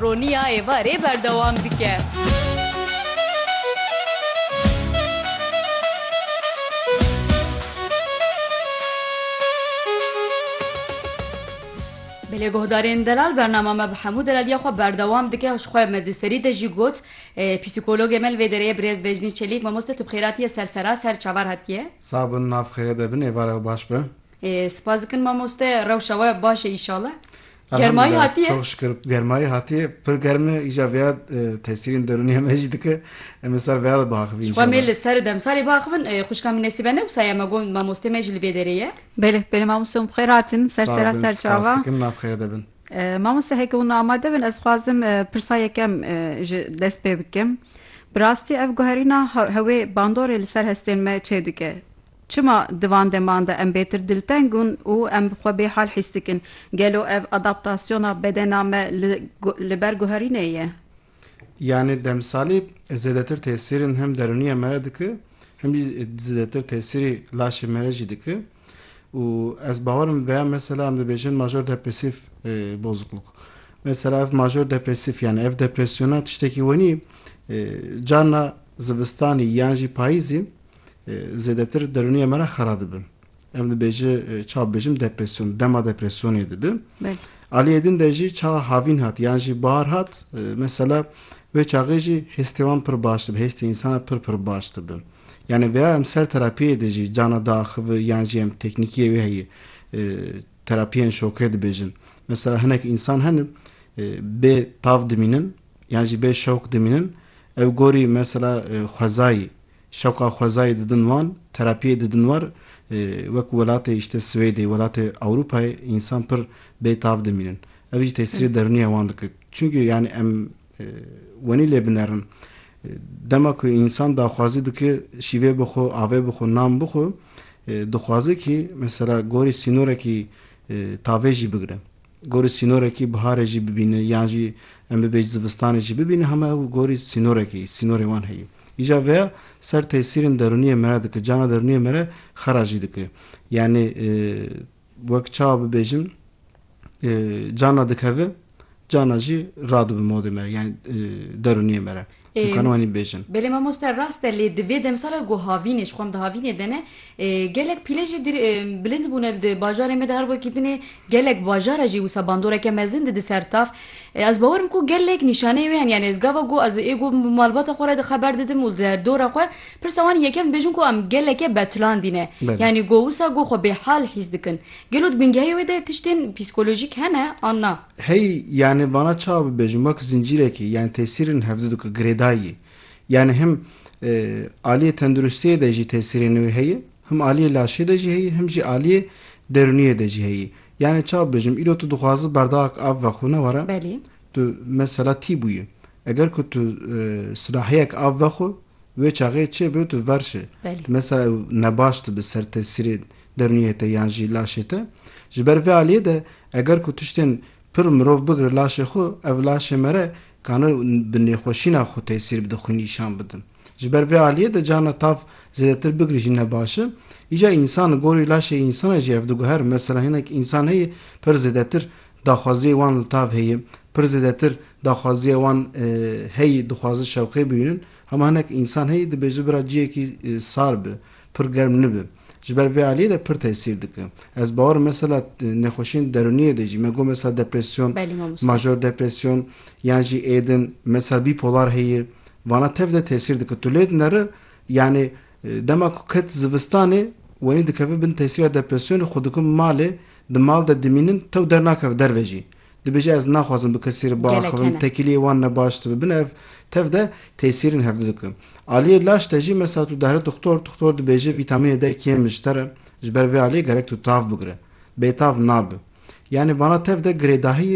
Roniya êvarê berdewam dike. Belê guhdarên delal bernama me bi hemû delaliya xwe berdewam dike û ji xwe me di serî de jî got psîkologê me li vê dereyê birêz Vejnî Çelîk mamoste tu bi xêratî ye ser sera ser çavar hatiye. Sax bin nav xêre de bin êvare û baş be. Spas dikin mamoste rewşa we baş e îşallah. Germayî hatiye? Çok şükür germayî hatiye. Pir germ e îja vêya tesîrên derûnî heme jî dike. Em ê sar vêya de biaxivîn îşallah. Xwe mê li ser demsalê biaxivin. Xwişka min nesîbe ne wisa ye me got mamostê me jî li vê derê ye. Belê belê mamoste hûn bi xêr hatin ser sera ser çava. Spas dikim navxeya de bin. Mamoste heke hûn amade bin ez dixwazim pirsa yekem ji dest pê bikim. Bi rastî ev guherîna hewê bandorê li ser hestên me çêdike. Çima di van deman de em bêtir dilteng ûn û em xwe bêhal hîs dikin? Gelo ev adaptasyona bedena me li li ber guherînê ye? Yanî demsalî zêdetir tesîrin hem derûniya me re dike hem jî zêdetir tesîrî laşê me re jî dike û ez bawer im veya mesela em dibêjin major depresîf bozukluk mesela ev major depresîf yanî ev depresyona tiştekî wenî carna zivistanî yan jî payîzî zêdetir derûniyê me re xera dibin. Em dibêje çawa bibêjim depresyon, dema depresyonê dibi. Aliyê din de jî çawa havîn hat yan jî bahar hat mesela wê çaxê jî hêstê wan pir baş dibi, hêstê însanan pir pir baş dibi. Yani veya em ser terapiyê de jî cana diaxibi yan jî em teknîkiyê wê heye terapiyên şokê dibêjin. Mesela hinek însan hene bê tav dimînin yan jî bê şok dimînin ew gorî mesela xwezayî Şewqa xwezayê didin wan, terapiyê didin war, wek welatê îşte Swêdê, welatê Ewropayê însan pir bê tav dimînin. Ev jî tesîrê derûnî ya wan dike. Çimkî yanî em wenî lê binerin. Dema ku însan daxwazî dike şîvê bixwe, avê bixwe, nan bixwe, dixwaze kî mesela gorî sînorekî tavê jî bigire. Gorî sînorekî biharê jî bibîne yan jî em bibêj zivistanê jî bibîne hema ew gorî sînorekî yî, sînorê wan heyî. Îja veya ser tesîrên derûniyê mere dike, cana derûniyê mere xera jî dike. Yanî wek çawa bibêjim cana dikeve cana jî radibe modê mere yanî derûniyê mere. Dikan wanî bêjin. Belê mamoste rast e lê di vê demsala ku havînê ji xwe em dihavînê de ne gelek pîle jî bilind bûne li di bajarê me de her wekî din ê gelek bajara jî wisa bandoreke mezin di di ser tav ez bawer im ku gelek nîşaneyê wê hene yanî ez gava ku ez ê ku bi malbata xwe re di xeber didim û di dora xwe pirsa wan yekem dibêjin ku em geleke betilandî ne yanî ku wisa ku xwe bêhal hîs dikin gelo di bingehê wê de tiştên psîkolojîk hene an na. Hey, yanî vana çawa bibêjim, wek zincîrekî, yanî tesîrên hevdu dike girêdayî. Yanî him aliyê tenduristiyê de jî tesîrê nû heye, him aliyê laşê de jî heye, him jî aliyê derûniyê de jî heye. Yanî çawa bibêjim, îro tu dixwazi berdawek av vexwe ne were? Belê. Tu mesela tî bûyî. Eger ku tu silahiyek av vexwe, wê çaxê çêbibe tu ver şi. Belê. Mesela ew nebaş dibe ser tesîrê derûniyê te yan jî laşê te. Ji ber vê aliyê de eger ku tiştên pir mirov bigire laşê xwe, ev laşê me re kane bi nêxweşîna xwe tesîr bide, xwe nîşan bide. Ji ber vê aliyê de carna tav zêdetir bigirî jî ne baş e. Îca însan li gorî laşê însanê jî ev diguhere. Mesela hinek însan heye pir zêdetir daxwaziyê wan li tav heye, pir zêdetir daxwaziya wan heye dixwazin şewqê bibînin. Hema hinek însan heye dibêje bira ciyekî sar be, pir germ nibe. Ji ber vê aliyê de pir tesîr dike. Ez bawer mesela nexweşiyên derûniyê de jî me got mesela depresyon, major depresyon yan jî êdin mesela bîpolar heye vana tev de tesîr dike. Tu lê dineri yanî dema ku ket zivistanê wenî dikeve bin tesîra depresyonê xwe dikin malê di mal de dimînin tew dernakeve derve jî. Dibêje ez naxwazim bi kesî re biaxivim, tekîliyê wan ne baş dibe. Bin ev tev de tesîrên hevdu dike. Aliyê laş de jî mesela tu dihre tuxtor, tuxtor dibêje vîtamînê der kêm e ji te re, ji ber vê aliyê gerek tu tav bigire. Bêtav nabe. Yanî bana tev de girêdahiyê,